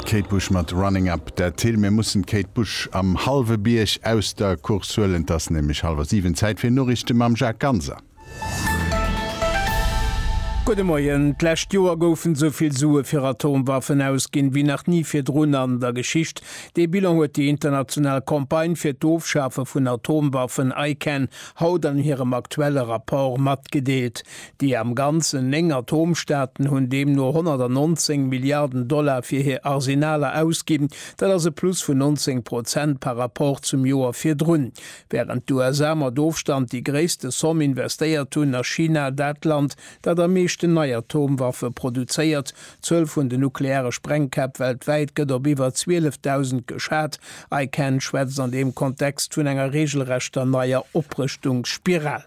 D'Kate Bush mat Running Up That Hill. Mir mussen d'Kate Bush am hallwe Bierg aus der Course huelen. Et ass nämlech hallwer siwen. Zäit fir Noriichte mam Jacques Ganser. Gudde Moien. D'lescht Joer goufen esou vill Sue fir Atomwaffen ausginn, wéi nach ni virdrun an der Geschicht. Dee Bilan huet déi international Campagne fir d'Ofschafe vun Atomwaffen, ICAN, haut an hirem aktuelle Rapport matgedeelt. Déi am Ganzen néng Atomstaaten hunn deemno 119 Milliarden Dollar fir hir Arsenaler ausginn, dat ass e Plus vun 19 Prozent par Rapport zum Joer virdrun. Wärend d'USA mat Ofstand déi gréisste Somm investéiert hunn, ass China dat Land, dat am meeschten nei Atomwaffe produzéiert. D'Zuel vun den nukleare Sprengkäpp weltwäit gëtt op iwwer 12.000 geschat. ICAN schwätzt an deem Kontext vun enger reegelrechter neier Oprëschtungsspiral.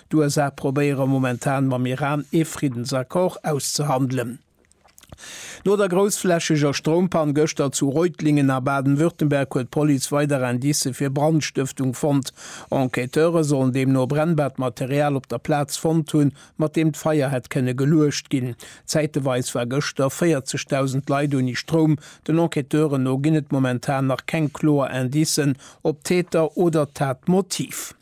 D'USA probéiere momentan mam Iran ee Friddensaccord auszehandelen. No der groussflächeger Stroumpann gëschter zu Reutlingen a Baden-Württemberg huet d'Police weider Indicë fir Brandstëftung fonnt. Enquêteure sollen deemno brennbaart Material op der Plaz fonnt hunn, mat deem d'Feier hätt kënne geluecht ginn. Zäiteweis war gëschter 40.000 Leit ouni Stroum. Den Enquêteuren no ginn et momentan nach keng kloer Indicen op d'Täter oder d'Tatmotiv.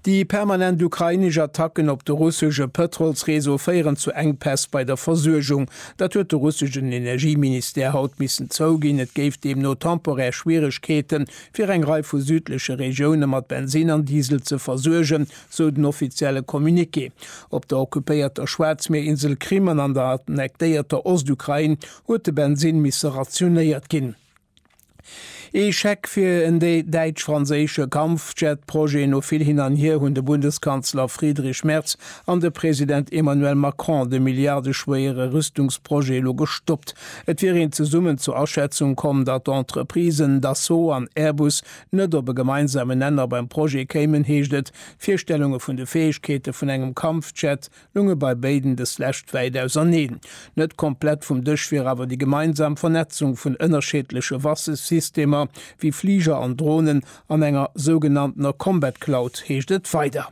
Déi permanent ukrainesch Attacken op de russesche Pëtrolsreseau féieren zu Enkpäss bei der Versuergung. Dat huet de russeschen Energieministère haut missen zouginn. Et géif deemno temporär Schwieregkeete fir eng Rei vu südleche Regioune mat Bensinn an Diesel ze versuergen, sou den offizielle Communiqué. Op der occupéierter Schwaarzmierinsel Krim an an der annektéierter Ostukrain huet de Bensinn misse rationéiert ginn. Ee Scheck fir en däitsch-franséische Kampfjet-Projet, No vill Hin an Hier hunn de Bundeskanzler Friedrich Merz an de President Emmanuel Macron de milliardeschwéiere Rüstungsprojet elo gestoppt. Et wier een zesummen zur Aschätzung komm, datt d'Entreprisen Dassault an Airbus net op e gemeinsamen Nenner beim Projet kéimen, heescht et. D'Virstellunge vun de Fäegkeete vun engem Kampfjet lunge bei béiden dës lescht wäit auserneen. Net komplett vum Dësch wier awer déi gemeinsam Vernetzung vun ënnerscheedleche Waffesystemer, wéi Fliger an Dronen, an enger sougenanntener Combat Cloud, heescht et weider.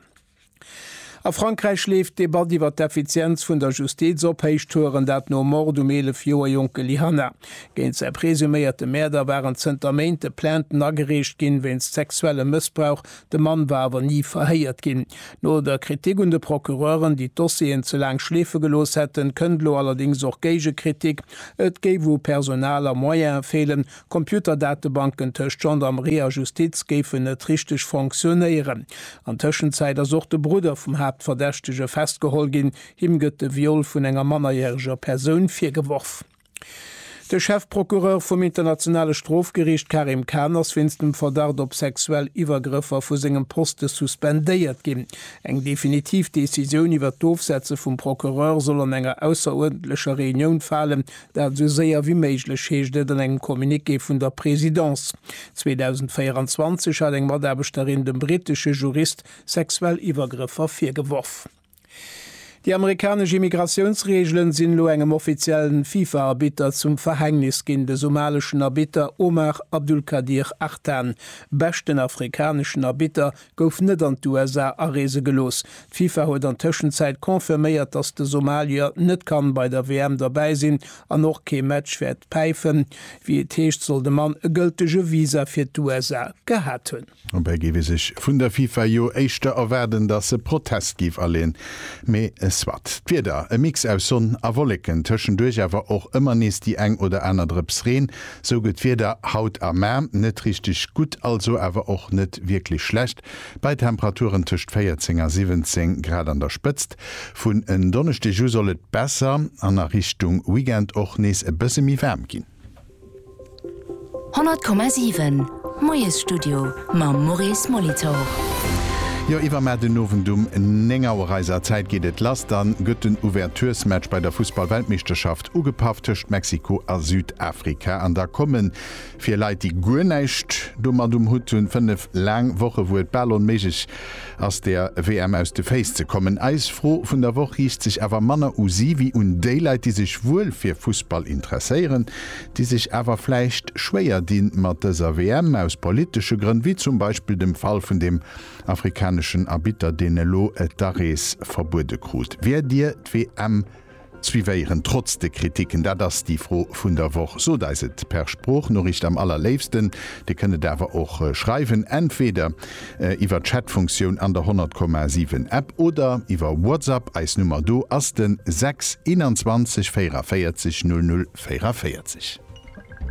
A Frankräich leeft d'Debatt iwwer d'Effizienz vun der Justiz op Héichtouren, dat nom Mord um 11 Joer jonke Lyhanna. Géint säi presuméierte Mäerder waren zënter Méint de Plainten agereecht ginn, wéinst sexuellem Mëssbrauch De Mann war awer ni verhéiert ginn. No der Kritik un de Procureuren, déi d'Dossieren ze laang schleefe gelooss hätten, kënnt elo allerdéngs och Géigekritik, et géif u Personal a Moyene feelen, d'Computerdatebanken tëscht Gendarmerie a Justiz géifen net richteg fonctionnéieren. An Tëschenzäit ass och de Brudder vum Haaptverdächtege festgeholl ginn. Him gëtt de Viol vun enger mannerjäreger Persoun virgeworf. De Chefprocureur vum Internationale Strofgeriicht Karim Khan ass wéinst dem Verdacht op sexuell Iwwergrëffer vu sengem Poste suspendéiert ginn. Eng definitiv Decisioun iwwer d'Ofsetze vum Procureur soll an enger ausseruerdentlecher Reunioun falen, dat esou séier wéi méiglech, heescht et an engem Communiqué vun der Presidence. 2024 hat eng Mataarbechterin dem brittesche Jurist sexuell Iwwergrëffer virgeworf. Déi amerikanesch Immigratiounsreegelen sinn elo engem offiziellen FIFA-Arbitter zum Verhängnis ginn. De somaleschen Arbitter Omar Abdulkadir Artan, beschten afrikaneschen Arbitter, gouf net an d'USA areese gelooss. D'FIFA huet an Tëschenzäit confirméiert, datt de Somalier net kann bei der WM derbäi sinn an och kee Match wäert päifen. Wéi et heescht, soll de Mann e gëltege Visa fir d'USA gehat hunn. Dobäi géif ee sech vun der FIFA jo éischter erwaarden, datt se Protest géif aleeën. Mee soit. D'Wieder, e Mix aus Sonn a Wolleken, tëschenduerch awer och ëmmer nees déi eng oder aner Drëps Reen. Sou gëtt d'Wieder haut a Maer net richteg gutt, also awer och net wierklech schlecht, bei Temperaturen tëscht 14 a 17 Grad an der Spëtzt. Vun en Donneschdeg u soll et besser an a Richtung Weekend och nees e bësse méi waarm ginn. 100,7 Moiesstudio mam Maurice Molitor. Jo, iwwermat den Owend um 9 Auer eiser Zäit geet et lass. Dann gëtt den Ouverturesmatch bei der Fussballweltmeeschterschaft ugepafft tëscht Mexiko a Südafrika. An da kommen, fir Leit déi guer näischt domat um Hutt hunn, 5 laang Woche wou et bal onméiglech ass der WM aus de Féiss ze kommen. Eis Fro vun der Woch riicht sech awer manner u si wéi un déi Leit, déi sech wuel fir Fussball interesséieren, déi sech awer vläicht schwéier di mat dëser WM, aus politesche Grënn, wéi zum Beispill dem Fall vun deem afrikaneschen Arbitter, deen elo d'Arees verbuede krut. Wäert Dir d'WM Suivéieren trotz de Kritiken? Dat ass déi Fro vun der Woch. Sot eis et per Sproochnoriicht am allerléifsten. Dir kënnt et awer och schreiwen, entweder iwwer d'Chatfunktioun an der 100,7 App oder iwwer WhatsApp. Eis Nummer do ass de 6 21 44 00 44.